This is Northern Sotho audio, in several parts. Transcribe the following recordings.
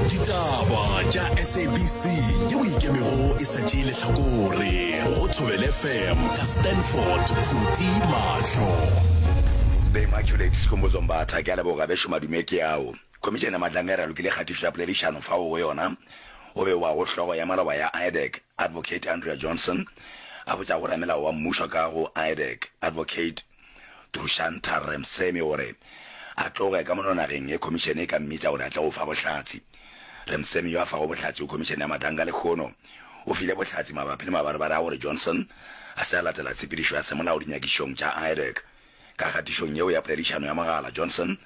ditaba tša sabc yeo ikemego e sa tšee letlhakore go thobele fm ka stanford khuti mahlo bemaculate sikhumbuzo mbatha ke a leboga bešo madume ke ao khomišene ya matlamere a lokile kgatišo ya poledišano fao go yona o be wa go hlogo ya maloba ya idec advocate andrea johnson a botša go ramelao wa mmušo ka go idec advocate Dushan Tharremsemi o re a tloge ka mono nageng ge khomišene e ka mmitša gore a tle go fa bohlatse. Remsemi yo a fago bohlatse go khomišene ya Madanga lehono o file bohlatse mabapi le mabarebare a gore Johnson a se a latela tshepedišo ya semolao dinyakišong tša IREC. Ka kgatišong yeo ya poledišano ya mogala, Johnson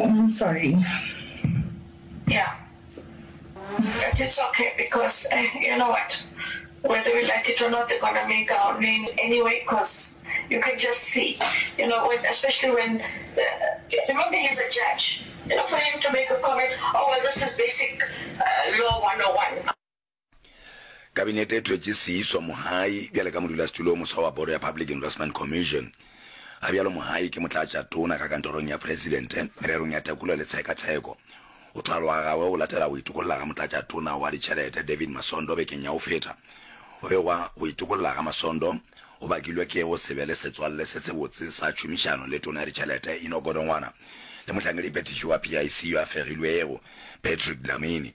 Umm sorry yeah but it's okay because eh you know what whether we like it or not they're gonna make our name anyway cause you can just see you know when especially when the, remember he's a judge you know for him to make a comment oh well this is basic uh, law 101 Kabinete e thwetše Siiswa Mohayi bjale ka modulasetulo o moswa wa Boro ya Public Investment Commission. Ga bjalo Mohayi ke motlatšatona ka kantorong ya Presidente mererong ya tekolo le tshekatsheko. Go thwalwa gagwe go latela go itokolla ga motlatšatona wa ditšhelete David Masondo bekeng ya go feta. Go begwa go itokolla ga Masondo go bakilwe ke go se be le setswalle se sebotse sa tšhomišano le tona ya ditšhelete Enoch Godongwana le mohlankedi phethiši wa PIC yo a fegilwego Patrick Dlamini.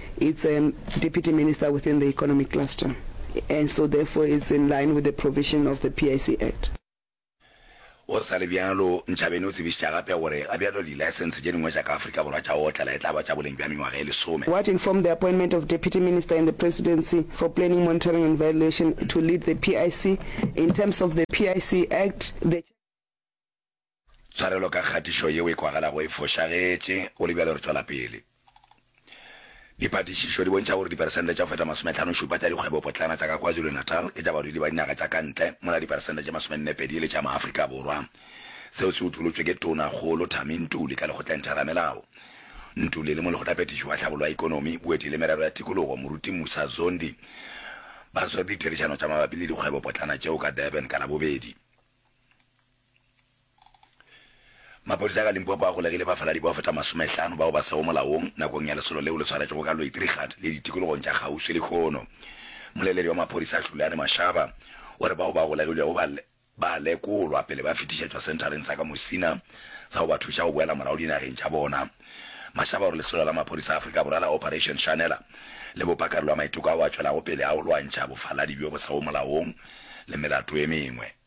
It's a Deputy Minister within the Economic Cluster and so therefore it's in line with the provision of the PIC Act. Go sa le bjalo, Nchabeni o tsebišitša gape gore ga bjalo di-license tše dingwe tša ka Afrika Borwa tša go otlela e tla ba tša boleng bja mengwaga e lesome. What informed the appointment of Deputy Minister in the Presidency for Planning, Monitoring and Evaluation to lead the PIC in terms of the PIC Act, the. Tshwarelo ka kgatišo yeo e kwagalago e fošagetše, go le bjalo re tšwela pele. Diphatišišo di bontšha gore diperesente tša go feta masometlhanošupa tša dikgwebopotlana tša ka KwaZulu-Natal ke tša badudi ba dinaga tša ka ntle, mola diperesente tše masomennepedi e le tša Maafrika Borwa. Seo se utolotšwe ke Tonakgolo Thami Ntuli ka Lekgotleng Theramelao. Ntuli le Molekgotlaphethiši wa Tlhabollo ya Ikonomi, Boeti le Merero ya Tikologo, Moruti Musa Zondi, ba swere ditherišano tša mabapi le dikgwebopotlana tšeo ka Durban ka Labobedi. Maphodisa ka Limpopo a golegile bafaladi bao feta masomehlano bao ba sego molaong nakong ya lesolo leo le swaretšwego ka Loitrichard le ditikologong tša kgauswi lehono. Moleledi wa maphodisa Hluliane Mashaba o re bao ba golegilwego ba ba lekolwa pele ba fetišetšwa senthareng sa ka Musina sa go ba thuša go boela morago dinageng tša bona. Mashaba o re lesolo la maphodisa a Afrika Borwa la Operation Shanela le bopa karolo ya maiteko ao a tšwelago pele a go lwantšha bofaladi bjo bo sego molaong le melato e mengwe.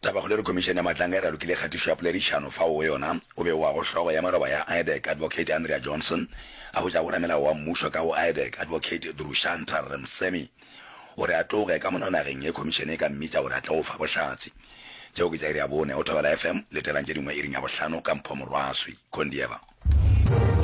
Tabakgolo e re Khomišene ya Matlanga e ralokile kgatišo ya poledišano fao go yona go bewago hlogo ya moroba ya IDEC, Advocate Andrea Johnson, a hwetša go ramelao wa mmušo ka go IDEC, Advocate Drushantar Remsemi, o re a tloge ka mono nageng ye Khomišene e ka mmitša gore a tle go fa bohlatse. Tšeo ke tša iri ya bone. O thobela FM, letelang tše dingwe iring ya bohlano ka Mpho Morwaswi. Kondieva.